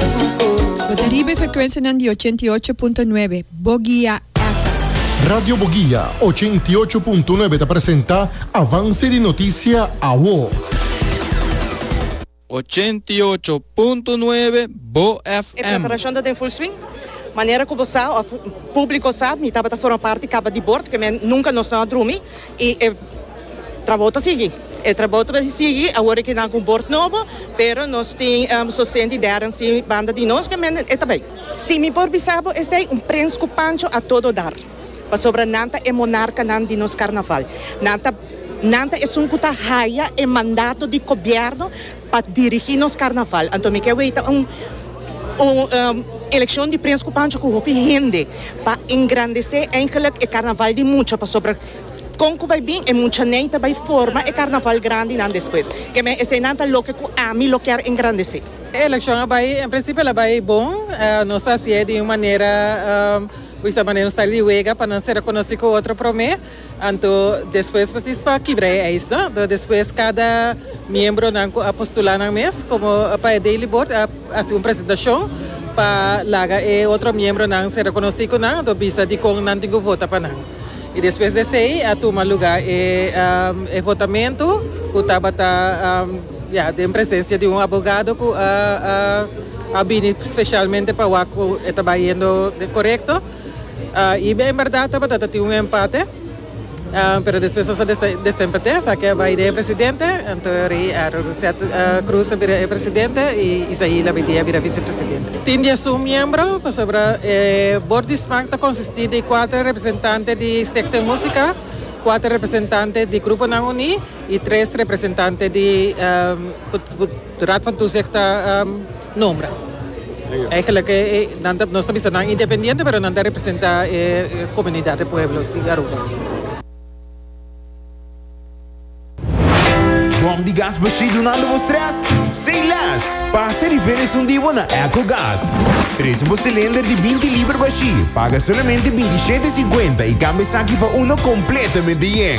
Bo ta riba e frekuensianan di ochenta i ocho punto nuebe Bogia FM. Radio Bogia ochenta i ocho punto nuebe ta presenta Avance di Noticia Awo. Ochenta i ocho punto nuebe Bo E FM. preparashon ta den full swing. Manera ku bo sa, òf publiko sa, mi tabata forma parti kaba di bord, ke men nunka nos no a drumi. I e trabou ta sigui. E trabou ta sigui awor ke nan ku bord nobo, pero nos tin sosten di dèren si banda di nos ke men e ta bai. Si mi por bisa bo esei, un prens ku pancho a todo dar, pasobra nan ta e monarkanan di nos karnaval. Nan ta nan ta esun ku ta haya e mandato di gobièrnu. Pa dirigi nos carnaval anto mi ke weta un eleccion di prins cu pancho cu hopi hende pa engrandece eigenlijk e carnaval di mucha pasobra con cu bay bin e mucha nen ta bay forma e carnaval grandi nan despues ke men esey nan ta loke cu ami lo kier engrandece. E eleccion a bay en principio a bay bon nos a haci'e di un manera wisa'e manera un style di wega pa nan ser reconoci cu otro prome. Anto despues por ti pa kibra e ijs no anto despues cada miembro nan cu a postula nan mes como pa e daily board a haci un presentacion pa laga e otro miembro nan ser reconoci cu nan anto bisa dicon nan tin cu vota pa nan y despues de esey a tuma lugar e e votamento cu tabata ya den presencia di un abogado cu a bini specialmente pa wak cu e ta bay yendo corecto. I bia en berdad tabata ta tin un empate, pero despues nos a desempate, esaki a bai den e presidente, anto rei Aaron Rousset Cruz a bira e presidente i Isaí Labidie a bira vicepresidente. Tin diesun miembro, pasobra e bord di smaak ta konsistí di kuater representante di Stichting Musica, kuater representante di Gruponan Uní i tres representante di. De Raad van Toezicht ta nombra. Eigenlijk nan ta, nos ta bisa nan independiente pero nan ta representa e comunidad, e pueblo di Aruba. Bom di gas bashí dunando bo stress? Say less! Pasa e rivera esun di bo na Echo Gas. Trece bo cilinder di binti liber bashí, paga solamente binti shete e cincuenta i cambia esaki pa uno completamente yen.